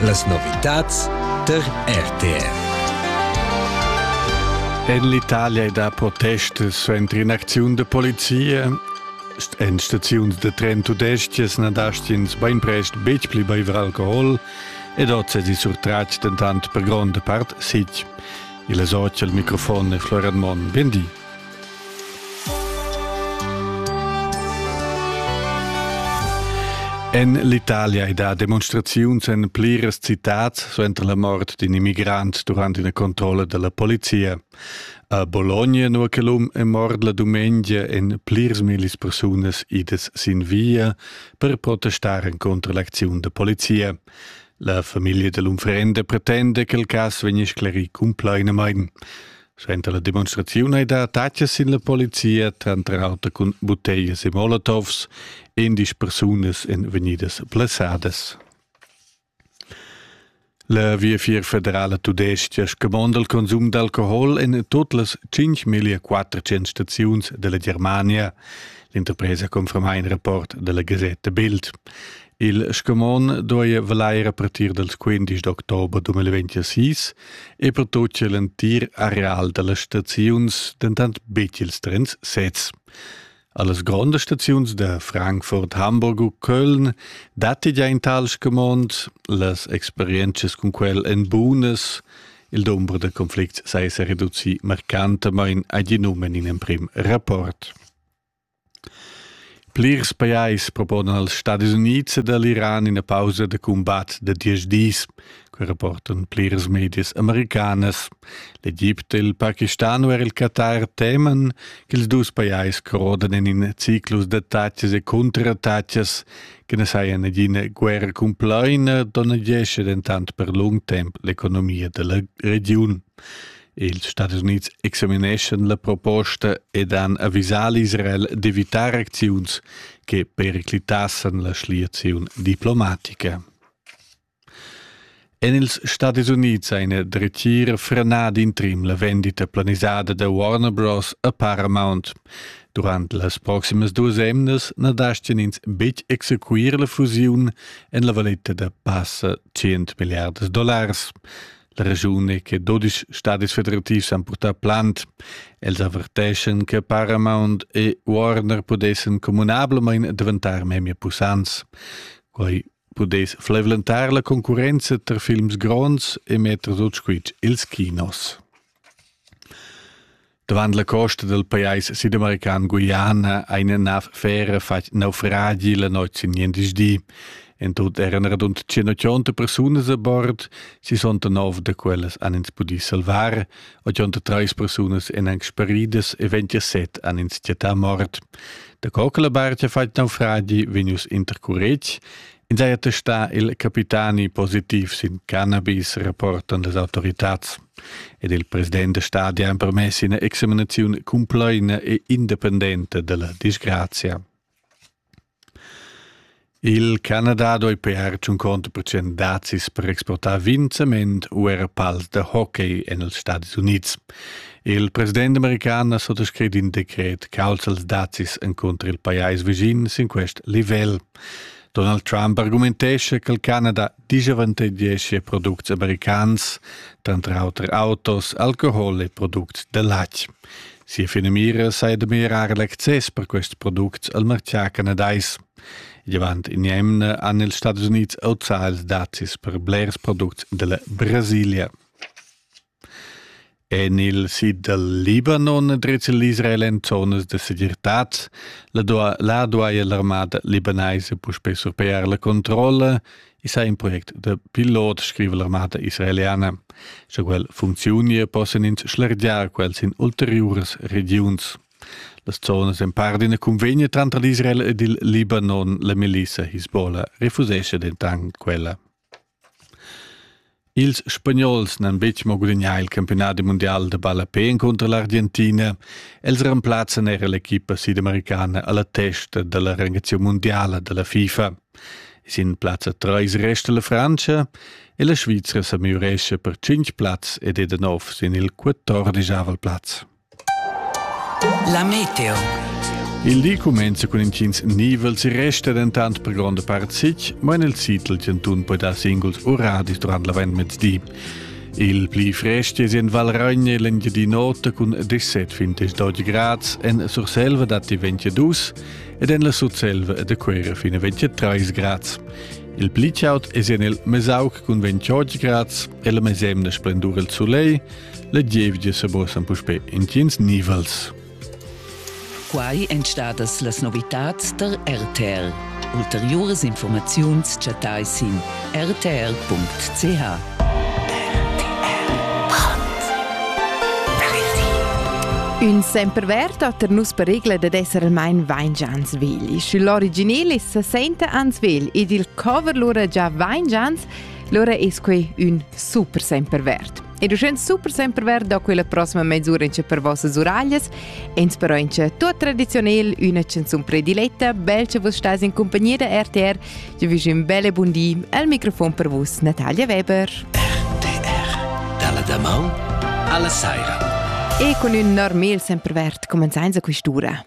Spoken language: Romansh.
Las novitads tar RTR. En l'Italia è da protest suenter in'acziun da polizia. En staziuns da tren tudeschias na dastgins bainprest betg pli baiver alcohol ed oz è surtratg dentant per gronda part sic. Il asocia al microfon è Florian Monn. Bien di. En l'Italia è da demonstraziuns en pliras citads suenter la mort d'in immigrant durant ina controlla da la polizia. A Bologna, nua che l'um è mort la dumengia, èn plirs millis persunas idas sin via per protestar contro l'acziun da polizia. La famiglia dell'unfrenda pretende che il cas vegnia sclerì cumplainamain. Senta la demonstraziun ei da attacchas sin la polizia, tranter auter cun butteglas e molotovs, ein dis persunas en vegnidas plazadas. La Viafier federala tudestga scamonda il consum d'alcohol en tot las 5.400 staziuns della Germania. L'interpresa conferma in rapport della Gazette Bild. Il scumon duaja valair a partir dals 15 d'october 2026 e per tut che l'entir areal da las staziuns dentant betg ils trens sez. Alles Grundstations da Frankfurt, Hamburg u Köln datti già in tal scumond, las experientschas cun quel èn bunas, il dumber da conflicts saja sa reducì marcantamain ad in um en in emprim rapport. Plirs pajais proponan als Stadis Unids ed a l'Iran ina pausa da cumbat da diesch dis. Quai rapportan pliras medias americanas. L'Egipt e il Pakistan u er il Qatar teman ch'ils dus pajais crodan en in ciclus da taccas e cunterattacas che na saja nagina guerra cun plaina, donnegescha dentant per lung temp l'economia da la regiun. Ils Stadis Unids examineschan la proposta ed han avisà l'Israel d'evitar acziuns che periclitassan la schliaziun diplomatica. En ils Stadis Unids ha eine dretgira frenà d'intrim la vendita planisada da Warner Bros. a Paramount. Durant las proximas duas emnas na dastgan ins betg exequir la fusiun en la valetta da passa 100 milliards dollars. La regiun è che dodisch stadis federativs han purtà plant. Els averteschan che Paramount e Warner pudessen communablamain daventar memia pussants. Quai pudess fleventar la concurrenza tar films gronds e metter sut squitsch ils kinos. Davant la costa del pajais sidamerican Guiana ha ina nav fera fatg naufragi la notg sin gliendis di. En tut eran radund 180 persunas a bord, si sonta nov da quellas han ins pudì salvar, 83 persunas èn anc sparidas e 27 han ins chattà mort. Da co che la barca ha fatg naufragi vegnius intercuretg, ins ha attestà il capitani positiv sin cannabis, rapportan las autoritads. ed il president da stadi ha empermess ina examinaziun cumplaina e independenta dalla disgrazia. Il Canada doi per tschun conto procent dazis per exportar vinzament u era pals da hockey en els Stadis Unids. Il president american ha sottoscrit in decret causa els dazis en contra il pajais visin sin quest livel. Donald Trump argumentescha che il Canada Dischavantagescha products americans, tanter auter autos, alcohol e products da latg. Sia finamira sai da mirar l'access per quests products al marcià canadais. Davant in'emna han ils Stati Unids auzà ils dazis per blers products della Brasilia. En il sid dal Libanon drizza l'Israel en zonas da segirtad. La duai, là duaja l'armada libanaisa puspè surpiar la controlla. I sa in project da pilot, scriva l'armada israeliana. Sche quel funcziunia, possan ins schlergiar quels in ulteriuras regiuns. Las zonas en par d'ina convegna tranter l'Israel ed il Libanon, la milissa Hezbollah refusescha dentant quella. Ils Spagnols n'han betg mo gudagnà il campiunadi mundial da ballape encunter l'Argentina, els remplazzan era l'equipa sidamericana a la testa da la rangaziun mundiala da la FIFA. Sin plazza 3 resta la Frantscha e la Svizra sa miurescha per 5 plazs ed è da nov sin il quatordisavel plaz. La meteo. Il di cumenza cun intgins nivels e resta dentant per gronda part sitg, ma en il zitel chantun poi dar singuls oradis durant l'avantmezdi. Il pli frest è en Valragn l'Engiadin'Ota cun 17-20 grads, en Surselva datti 22 ed en la Sutselva da Cuera fino 23 grads. Il pli chaud è en il Mesauc cun 28 grads e la mesemna splendur il soleil, La gievgia se bosan puspe intgins nivels. Quai èn stadas las novitads der RTL. Ulteriores Informaziuns chattai sin rtl.ch. Ün sempre verto ter nus per regla ded esser almain vaingians vegli. Sü l'originelis se senta ans vegl ed il cover lura già vaingians, lura es que ün super sempre vert. Ed uschè super semperver da quella prossima mezz'ura incha per vossas uraglias, ins però incha tuot tradiziunel üna canzun prediletta, bel che vus stais in compagnia da RTR, io vi un belle bun di al microfon per vus Natalia Weber. RTR, dalla damaun alla saira. E con un normel sempervert comenzainsa quest'ura.